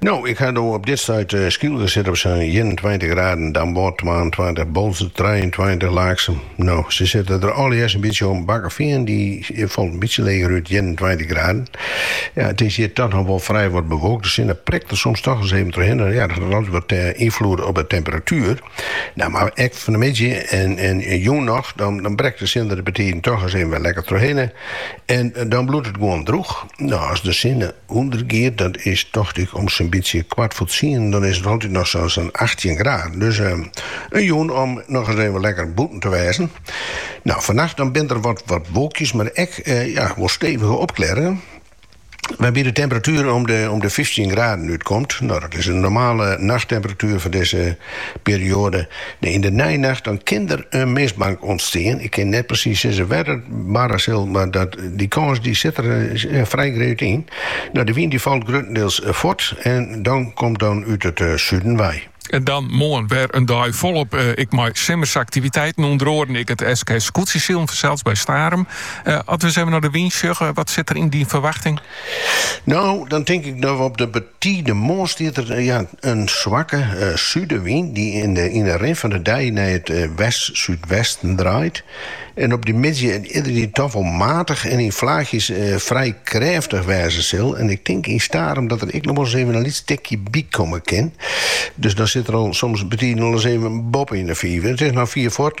No, ik ha no op dit stuit Skylge sit op sa'n ienentweintich graden, Damwâld twaentweintich, Boalsert trijeentweintich, Laaksum, no, se sitte der allegearre in bytsje om, Bakkeveen dy falt in bytsje leger út, ienentweintich graden. Ja, it is hjir toch noch wol frij wat bewolkt, de sinne prikt der soms toch ris even trochhinne, ja, dat hat altyd wat ynfloed op de temperatuer. Nou, mar ek fan de middei en jûn noch, dan brekt de sinne der betiden toch ris even wer lekker trochhinne en dan bliuwt it gewoan drûch. No, as de sinne ûndergiet, dat is tocht ik om sa'n bytsje kwart foar tsienen, dan is it altyd noch sa sa'n achttjin graden. Dus in jûn om noch ris even lekker bûten te wêzen. No, fannacht dan binne der wat wolkjes, mar ek ja, wol stevige opklearringen, wêrby't de temperatuer om de om de fyftjin graden útkomt. No, dat is in normale nachttemperatuer fan dizze perioade. De yn de neinacht dan kin der in mistbank ûntstean. Ik kin net presys sizze wêr't it barre sil, mar dat, dy kâns dy sit der frij grut yn. No, de wyn dy falt gruttendeels fuort en dan komt dan út it suden wei. En dan moarn wer in dei folop ek mei simmersaktiviteiten, ûnder oaren ek it SK Skûtsjesilen fansels by Starum. As we ris even nei de wyn sjogge, wat sit der yn dy ferwachting? No, dan tink ik no op de. Tiisdeitemoarn stiet der ja in swakke súdewyn dy't yn de rin fan de dei nei it west-súdwesten draait en op dy middei yndied toch wol matich en yn flaachjes frij krêftich wêze sil en ik tink yn Starum dat der ek noch wolris even in lyts tikje bykomme kin. Dus dan sit der al soms betiden al ris even boppe yn de fiven. It is noch fier fuort.